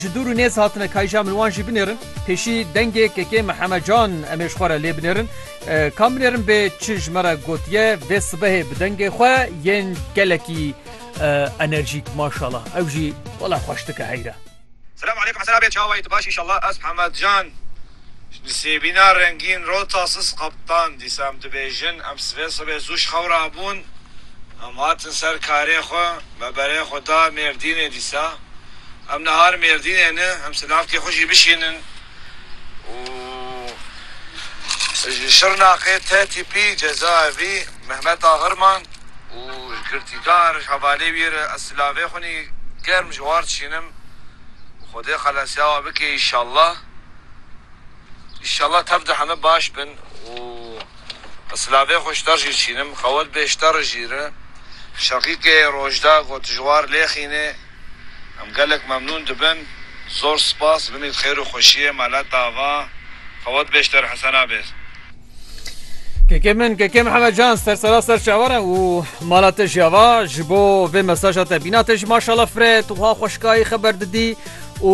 Ji dûr û nêz hatine kayja min wan jî binêrin. Pêşî dengê kekê me Heme Can em ê ji xwe re lê binêrin. Kam binêrin bê çi ji me re gotiye vê sibehê bi dengê xwe yên gelekî enerjîk maşala ew jî wela xweş dike heyre. Selam alekum Hesen Abê çawa yî tu baş îşallah ez Heme Can Di sêbîna rengîn rota siz qeptan dîsan dibêjin em sivê sibê zû ji xew re bûn, em hatin ser karê xwe, me berê xwe da Mêrdînê dîsa em nihar Mêrdînê ne, em silavkê xwe jî bişînin û ji Şirnexê tê tîpî cezaevî Mehmet Ahirman û ji girtîkar ji hevalê wî re ez silavê xwe nî germ ji war dişînim û Xwedê xelesyawa bike îşallah. Înşallah tev de heme baş bin û ez silavê xwe ji te re jî dişînim. Qewet bê ji te re jî re. Şeqîqê Rojda got tu ji war lêxînê. Em gelek memnûn dibin. Zor spas. Binê di xêr û xweşiyê mele tava. Qewet bê ji te re Hesen Abêz. Kekê min, Kekê Mihemed Can ser sera ser çawa re û mala te jî ava ji bo vê mesaja te bîna te jî maşala firê tu ha xweşkayî xeber didî û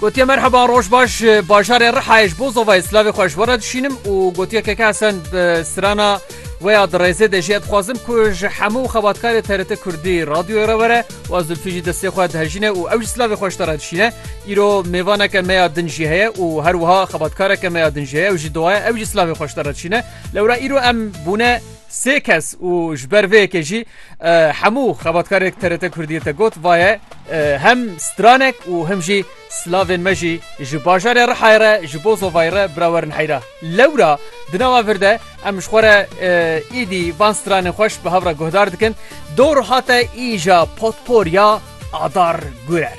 Gotiye merheba roj baş bajarê Rihayê ji bo zovayê silavê xwe ji we re dişînim û gotiye keke esen bi sirana weya di rêzê de jî ez dixwazim ku ji hemû xebatkarê TRT Kurdî radyoyê re were û ez Zülfî jî destê xwe dihejîne û ew jî silavê xwe ji te re dişîne. Îro mêvaneke me ya din jî heye û her wiha xebatkareke me ya din jî heye ew jî dowaye ew jî silavê xwe ji te re dişîne. Lewra îro em bûne Sê kes û ji ber vê yekê jî hemû xebatkarek TRT Kurdiyê te got vaye hem stranek û him jî silavên me jî ji bajarê Rihayê re ji bo zovayê re bira werin heyra. Lewra di nava vir de em ji xwe re îdî van stranên xweş bi hev re guhdar dikin. Dor hate îja potpor ya Adar Gurer.